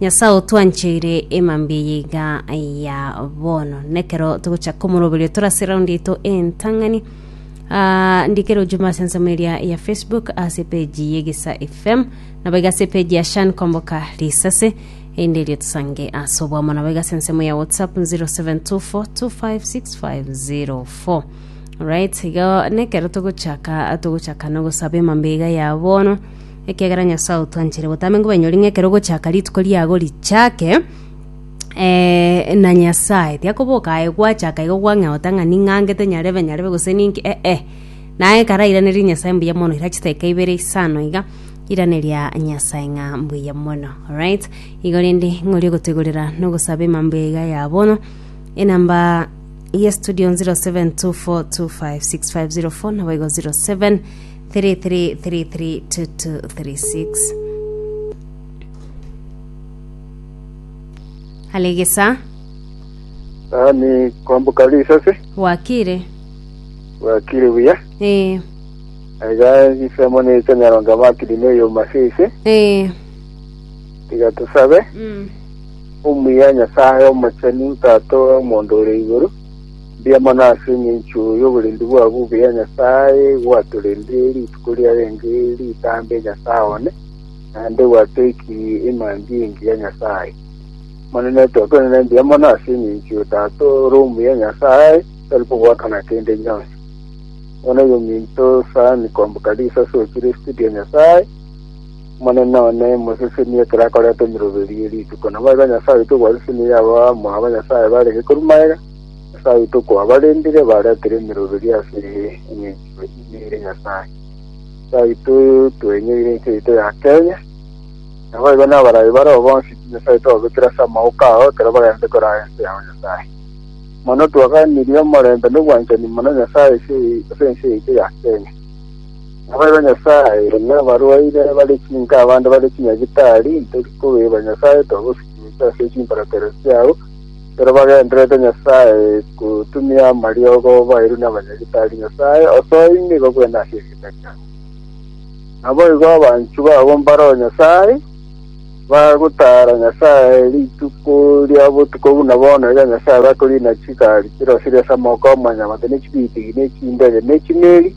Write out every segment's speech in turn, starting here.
Nyasae otwancheire emambia eye iga ya bono, nekero togocha komoroberio tore ase round yaito entang'ani. Ah, ndikere ojumbe ase ensemo eria ya Facebook ase page ye Gisa FM nabo iga ase page ya Shan Komboka Risase ende erio tusange ase obwamo nabo iga ase ensemo ya WhatsApp 0724256504 right iga nekero togochaka togochaka nogosaba emambia iga ya bono Ekiagera Nyasae otwanchire botambe ngo banyori ng'a ekero ogochaka rituko riago richake, eh, na Nyasae tiakoboka aye gwachaka igo gwang'eota ng'a ning'angete nyarebe nyarebe gose ninki eh eh. Naye karairanerie Nyasae mbuya mono ira chidakika ibere isano iga iraneria Nyasae ng'a mbuya mono. Alright. Igo rende ng'ori ogotoigorera na ogosaba emambuya iga ya bono. Enamba ya studio 0724256504 nabo igo 07 33332236 Alegesa Tani kwamboka risase, bwakire bwakire buya. ee Aiga ensemo necha Nyaronge Makiri na eyo Masese, ee tiga tosabe. mm. Omuya Nyasae omochenu, Tata omonto ore igoro, Mbuya mono ase engencho y'oborendi bwa bobe ya Nyasae gwatorende rituko riarenge ritambe Nyasae one, naende gwatoikirie emambia engiya ya Nyasae. Omonene tokwenene mbuya mono ase engencho y'Otato ore omuya Nyasae tari kogwakana kende gionsi. Bono yominto sani komboka risasi okire studio ya Nyasae, Omonene one, mosesenie ekero akoreta emeroberi ye rituko. Naboigo Nyasae oito gwasesenirie abamwabo banyasae bare gekorwa magega, Nyasae oito okwabarendire, baretire emeroberi ase eng'enchero ime ere Nyasae. Nyasae oito twenyoire ense yaito ya Kenya, naboigo nabarai bareo bonsi pi Nyasae oito obekire ase amaboko ao ekero bagachete koraa ense yao Nyasae. Mono twagenirie omorembe nobwanchani mono Nyasae ase ense yaito ya Kenya. Nababe Nyasae, nabarwaire, bare chinka abande bare chinyagitari, ntori kobeba Nyasae, twagosikinyete ase chimbaratero chiao, ekero bagendererete Nyasae gotumia amariogo baeirwe nabanyagitari, Nyasae, osoe ime igo bwena ase erieta riao. Naboigo abanchu babo mbaro Nyasae, bagotara Nyasae rituko ria botuko buna bono iga Nyasae bakoriina chigari chirosirie ase amoko 'omonyamate, ne chibitigi, ne chindege, ne chimeri,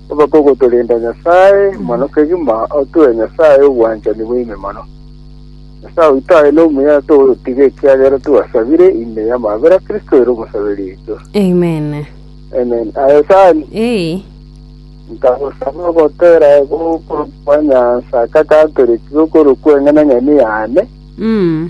Obakogotorenda Nyasae mono kegima otue Nyasae obwanchani bwaime mono. Nyasae oito aye nomuya togoyotiga ekiagera twasabire ime y'amabera Kristo ere omosaberi oito. Amen. Amen. Aye Sani, Ee. nkagosaba ogotera egokoro kwa Nyansa kakatoreti gokoro kw'eng'enang'eni yane. Mm.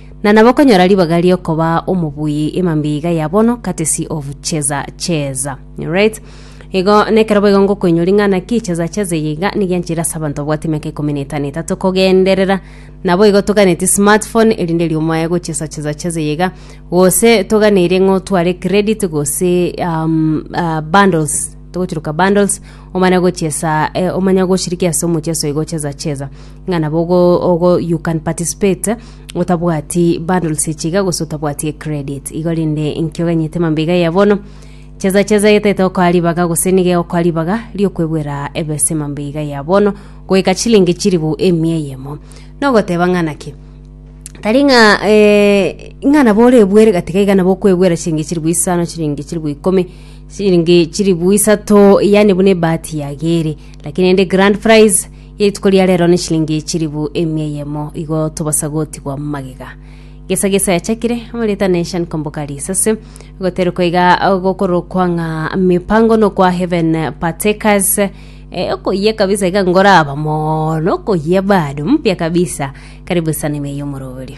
Na nabo okonyora ribaga riokoba omobuyi emambiiga ya bono, courtesy of Cheza Cheza. Alright. Igo nekero boigo ngokoinyori ng'a naki Cheza Cheza eye iga nigo yanchire ase abanto babwate emiaka ikomi na etano etato kogenderera. Nabo igo toganetie smartphone erinde riomoe gochesa Cheza Cheza eye iga. Gose toganeire ng'a otware credit gose um, ah, bundles togochiruka bundles omane gochesa eh, omanye goshiriki ase omocheso igo Cheza Cheza. ng'a nabo ogo you can participate otabwati bundles echi iga gose otabwati credit igo rende inki oganyete mambia iga ya bono cheza cheza yetete okoa ribaga gose niga egokoa ribaga riokwebwera ebese mambia iga ya bono goika chilingi chiribu emia eyemo nogoteba ng'a naki tari ng'a eh, ng'a nabo orebwere gatiga iga nabo okwebwera chilingi chiribu isano chilingi chiribu ikomi chilingi chiribu isato yani buna ebahati yagere lakini rende grand prize Rituko ria rero ne chilingi chilifu emia eyemo igo tobasa gotigwa magega. Gesa gesa yachakire, amarita ne Shan Komboka Risase, goterukwa iga gokorokwa ng'a mipango nokwa Heaven Partakers, eh, okoyia kabisa iga ngoraba mono okoyia bado mpya kabisa karibu sana ime yomoroberio.